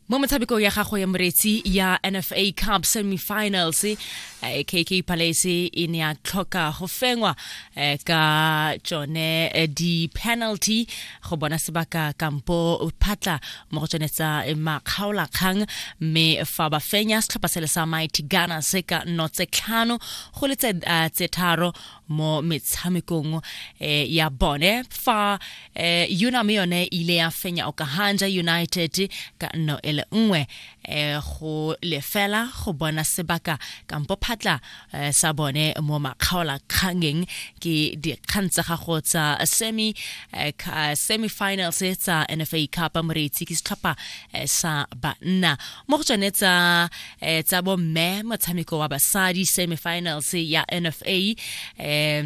mo motshamekong ya gago ya moretsi ya nfa cup semifinals kk eh, palace e ne ya tlhoka go fengwa eh, ka tsone eh, di-penalty go bona sebaka kampo phatla mo go tsone tsa makgaolakgang mme fa ba fenya setlhopha sele sa mighty gunners ka nno tse tlhano go le tse tharo mo metshamekong eh, ya bone fa eh, yona me yone ile ya fenya okahanja united ka nno e le nngwe eh, go lefela go bona sebaka kampo phatla eh, sa bone mo makgaola kgangeng ke dikgang tsa gago tsa semi eh, semifinals tsa nfa cup moreitsi ke setlhopha eh, sa banna mo go tsone tsa eh tsa bo mme motshameko wa basadi semifinals ya NFA eh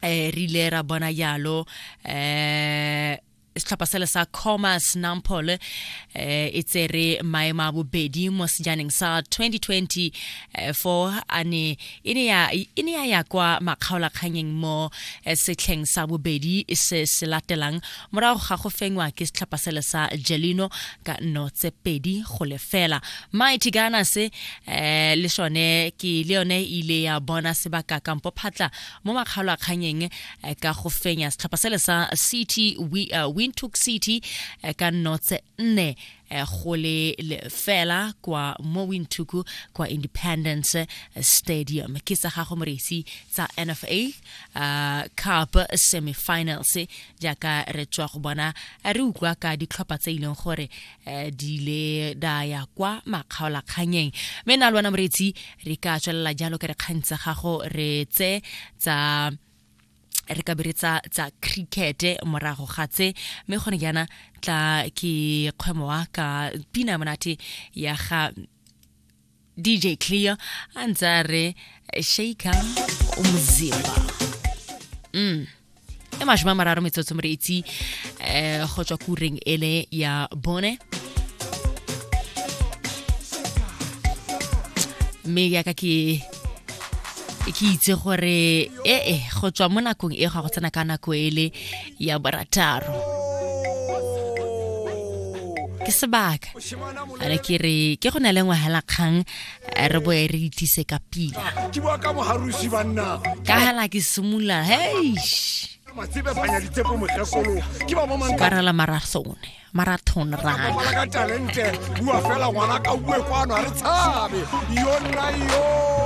eh rile ra bona yalo eh setlhopha sele sa commerce nampol um eh, e tsere maemo a bobedi mo sejaneng sa 2020 eh, fo a ne e ne ya ya kwa makgaolakganyeng mo eh, setlheng sa bobedi se se latelang morago ga go fengwa ke setlhopha sele sa jelino ka nno tse pedi go lefela mighty gana se um le sone ke le yone e ile ya bona sebaka kampo phatla mo makgalo a kganyeng eh, ka go fenya setlhopha sele sa city eh, wintook city ka nno tse nne eh, go le fela kwa mo winthuku kwa independence eh, stadium ke tsa gago moresi tsa nfa uh, eh, cup semifinals jaaka re tswa go bona re utlwa ka ditlhopha tse e leng gore uh, di ile da ya kwa makgaolakganyeng mme na le wena moretsi re ka tswelela jalo ke re kgang tsa gago re tse tsa re ka bere tsa tsa cricket morago ga tse mme gone jaana tla ke kgwemo wa ka pina monate ya ga DJ Clear a ntse a re shaker umzimba mm e mashome a mararo metsotso more itse um go tswa kureng ele ya bone mme yaka ke ke itse gore ee eh, go tswa mo nakong e ga go tsena ka nako e le ya borataro ke sebaka are ke re ke go na le ngwagela kgang eh, re boe re itise ka pila ka hela ke simolola heish ka rela marathone marathon rana